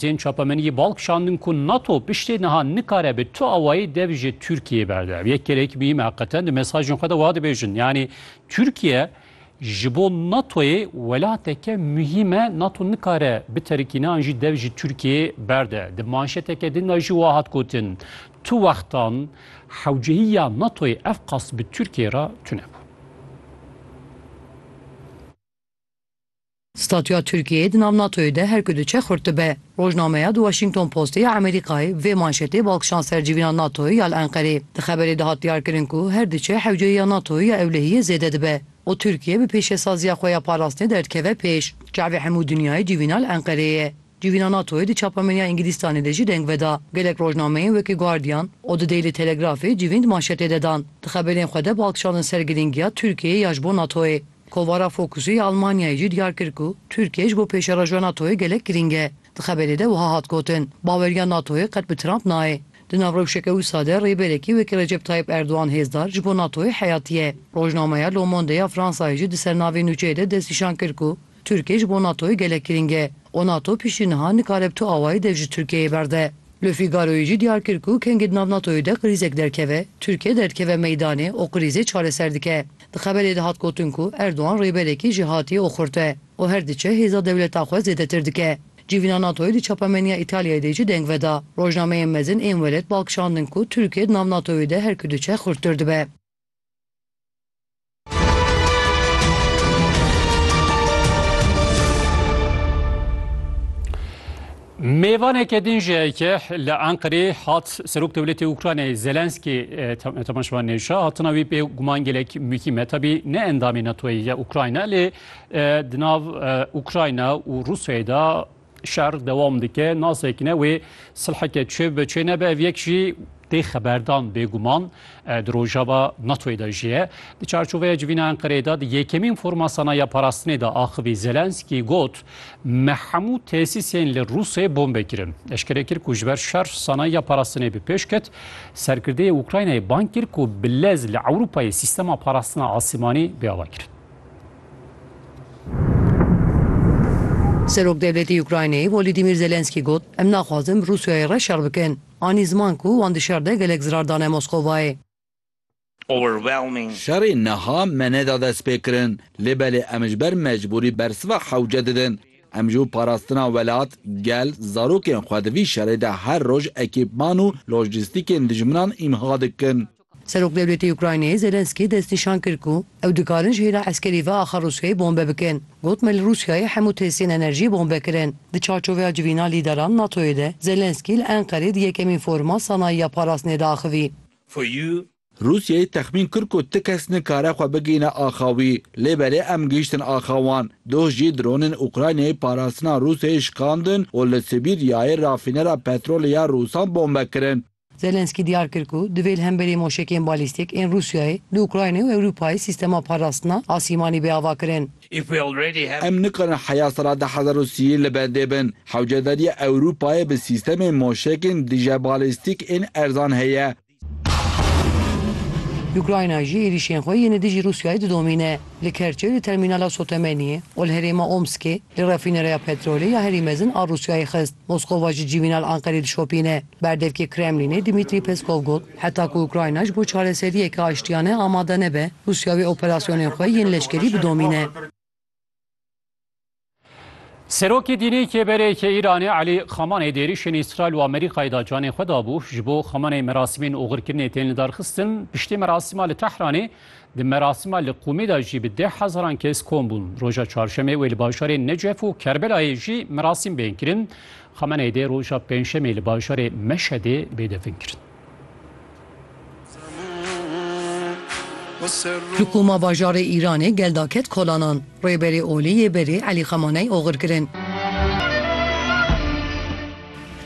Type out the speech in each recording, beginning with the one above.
Tên çapemeniyê bal kişandin ku nato piştê niha nikare bi tu awayî dev ji Tirkiyeyê berde. Ev yek kerek muhîm e heqeten di mesajên xwe de wiha dibêjin. Yanî Tirkiye ji bo natoyê welateke muhîm e, nato nikare biterikîne an jî dev ji Tirkiyeyê berde. Di manşeteke din de jî wiha hat gotin, Tu wextan hewcehî ya natoyê ev qas bi Tirkiyeyê re tunebû. Statuya Tirkiyeyê di nav NATO'yê de her ku diçe xurt dibe. Rojnameya The Washington Postê ya Emerîkayê vê manşetê bal kişand ser civîna NATO'yê ya li Enqerê. Di xeberê de hat diyarkirin ku her diçe hewceyî ya NATO'yê ya ewlehiyê zêde dibe û Tirkiye bi pêşesaziya xwe ya parastinê derdikeve pêş. Çavê hemû dinyayê civîna li Enqerê ye. Civîna NATO'yê di çapemeniya Îngilîstanê de jî deng veda. Gelek rojnameyên wekî Guardian û The Daily Telegraphê civîn di manşetê de dan. Di xeberên xwe de balkişandin ser girîngiya Tirkiyeyê ya ji bo NATO'yê. Kovara Focus'ê ya Elmanyayê jî diyar kir ku Tirkiye ji bo pêşerajûya NATO'yê gelek girîng e. Di xeberê de wiha hat gotin, Baweriya NATO'yê qet bi Trump nayê. Di nav rewşeke wisa de rêberekî wekî Recep Tayyip Erdogan hêzdar ji bo NATO'yê heyatî ye. Rojnameya Le Monde ya Fransayê jî di ser navê nûçeyê de destnîşan kir ku Tirkiyê ji bo NATOyê gelek girîng e û NATO piştî niha nikare bi tu awayî dev ji Tirkiyeyê berde. Le Figaroyê jî diyar kir ku kengê di nav NATOyê de krîzek derdkeve, Tirkiye derdikeve meydanê û krîzê çareser dike. Di xeberê de hat gotin ku Erdogan rêberekî jêhatî û xurt e û her diçe hêza dewleta xwe zêdetir dike. Civîna NATOyê di çapemeniya Îtalyayê de jî deng veda. Rojnameyên mezin ên welêt bal kişandin ku Tirkiye di nav NATOyê de her ku diçe xurttir dibe. Mêvaneke din ji heke li Enqirê hat Serok Dewletê Ukraynayê Zelenskî temaşevan nêşa hatina wî pê guman gelek mûkî me tabî ne endamê NATOyê ye Ukrayna lê di nav Ukrayna û Rûsyayê de Şer dewam dike, nasekine wê silheke çê bibe çê nebe ev yek jî tê xeberdan bêguman di rojava NATOyê de jî ye. Di çarçoveya civîna Enqereyê de di yekemîn forma sanayiya parastinê de axivî Zelenskî got me hemû tesîsên li Rûsê bombê kirin. Eşkere kir ku ji ber şer sanayiya parastinê bi pêş ket. Serkirdeyê Ukraynayê bang kir ku bi lez li Ewropayê sîstema parastina asimanî bê avakirin. Serokdewletê Ukraynayê Volodîmîr Zelensky got, Em naxwazin bi Rûsyayê re şer bikin. Anî ziman ku wan di şer de gelek zirar dane Moskovayê. Şerê niha me neda destpêkirin, lê belê em ji ber mecbûrî bersiva hewce didin. Em ji bo parastina welat, gel, zarokên xwe di vî şerê de her roj ekîpman û lojîstîkên dijminan îmha dikin. Serokwdewletê Ukraynayê Zelensky destnîşan kir ku ew dikarin ji hêla eskerî ve axa Rûsyayê bombe bikin. Got me li Rûsyayê hemû tesîyên enerjiyê bombe kirin. Di çarçoveya civîna lîderan NATO'yê de Zelensky li Enqerê di yekemîn foruma sanayiya parastinê de axivî. Rûsyayê texmîn kir ku ti kes nikare xwe bigihîne axa wî. Lê belê em gihîştin axa wan. Doh jî dronên Ukraynayê parastina Rûsyayê şikandin û li Sibîryayê rafînera petrolê ya Rûsan bombe kirin. Zelensky diyar kir ku divê li hemberî moşekên balîstîk ên Rûsyayê li Ukraynayê û Ewropayê sîstema parastina asîmanî bê avakirin. Em nikarin heya sala du hezar û sî li bendê bin. Hewcedariya Ewropayê bi sîstemên moşekên dijebalîstîk ên erzan heye. Ukrayna jî êrîşên xwe yên li dijî Rûsyayê didomîne. Li Kerçê li termînala Sotemeniyê û li herêma Omskê li refînereya petrolê ya herî mezin a Rûsyayê xist. Moskova ji civîna li Enqerê dişopîne. Berdevkê Kremlînê Dmîtrî Peskov got, Heta ku Ukrayna ji bo çareseriyeke aştiyane amade nebe, Rûsya wê operasyonên xwe yên leşkerî bidomîne. Serokê dînê Kêberê yê Îranê Elî Xamaney di êrîşên Îsraîl û Amerîkayê de canê xwe dabû. Ji bo Xamaney merasimên oxirkirinê tên lidarxistin. Piştî merasima li Tehranê Di merasima li Qûmê de jî bi deh hezaran kes kom bûn. Roja Çarşemê wê li bajarên Necef û Kerbelayê jî merasîm bên kirin. Xamenei dê roja Pêncşemê li bajarê Meşedê bê defin kirin. Li Qûma bajarê Îranê gel da ket kolanan. Rêberê olî yê berê Elî Xamaney oxir kirin.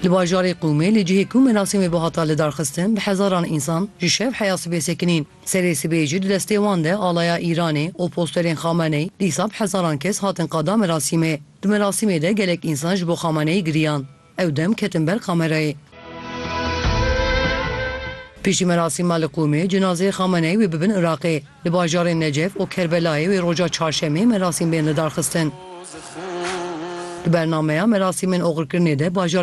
Li bajarê Qûmê li cihê ku merasîmê bihata lidarxistin bi hezaran însan ji şev heya sibê sekinîn. Serê sibê jî di destê wan de alaya Îranê û posterên Xameneî dîsa bi hezaran kes hatin qada merasîmê. Di merasîmê de gelek însan ji bo Xameneî giriyan. Ew dem ketin ber kamerayê. Piştî merasîma li Qûmê cinazeyê Xameneî wê bibin Iraqê. Li bajarên Necef û Kerbelayê wê roja Çarşemê merasîm bên lidarxistin. Di bernameya merasîmên oxirkirinê de bajarê